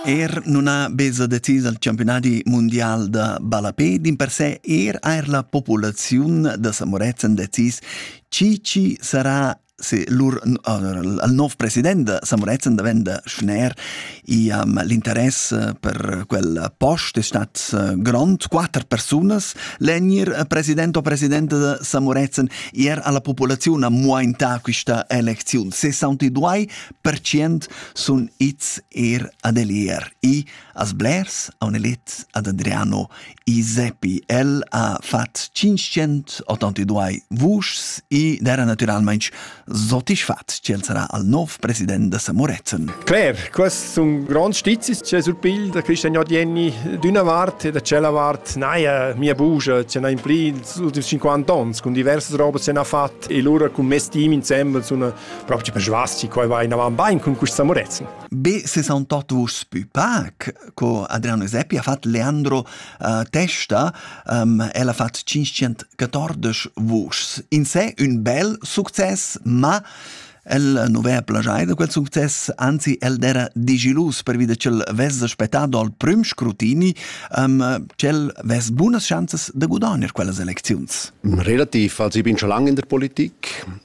Er non ha beza decis al campionadi mundial da ballapé, din per se er eir la populaziun da Samorezen decis chi chi sarà se lur al nov president da Samorezen davenda schner i um, l'interess per quella post è stat eh, grond quatter personas l'enir eh, president o presidente da Samorezen ier alla popolazione ha muaintà questa elezione 62 pertschient sun its er ad el er i as blers aun elit ad Adriano i seppi el ha fat 582 vuschs i d'era naturalmaing sotisfat ch'el sarà al nov president da Samorezen. Claire, quest sun grands stizis che surpil da Christian Jordieni d'una vart e da cella vart naja mia bugia ce n'ha impli els ultims 50 ans con diversas robas se n'ha fat e lura con mes team insembel sun propi persvasti quai va inavan bain cun questa morezen. Be se son tot vus pü pac, co Adriano Seppi ha fat Leandro uh, testa, um, el ha fat 514 vuschs. In se un bel success, ma el nu vea plagiai da quel success, anzi el d'era digilus per vide ch'el vess aspettà dal prüm scrutini, um, ch'el vess bunas chanzas da gudagnere quellas elecziuns. Relativ, als ich bin schon lange in der Politik,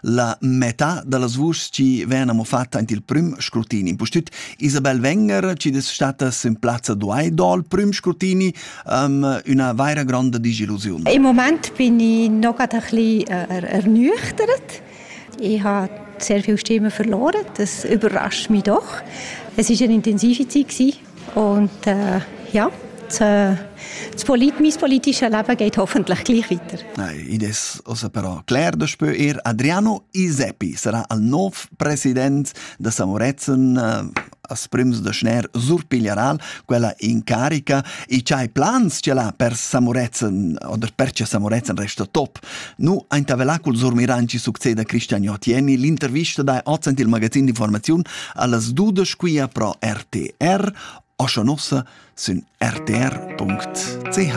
la metà dallas vuschs chi vegnan amo fatta aint il prüm scrutini. Pustüt Isabel Wenger chi'd es stata in plazza duai dal prüm scrutini, um, üna vaira gronda disillusiun. Im Moment bin ich noch ein bisschen äh, ernüchtert. Ich habe sehr viele Stimmen verloren, das überrascht mich doch. Es war eine intensive Zeit Und äh, ja, das Polit mein politisches Leben geht hoffentlich gleich weiter. Nein, id es also però cler daspö er Adriano Iseppi sarà al nov president da Samorezen äh, as prims da schner surpiglieral quella incarica e c'hai plans ce l'ha per Samorezen oder perche Samorezen resta top Nu intervela cul surmiran chi succeda Cristian Jotieni l'intervista da oz ant il magazin d'informaziun allas dudesch quia pro RTR, oscha nossa sün rtr.ch.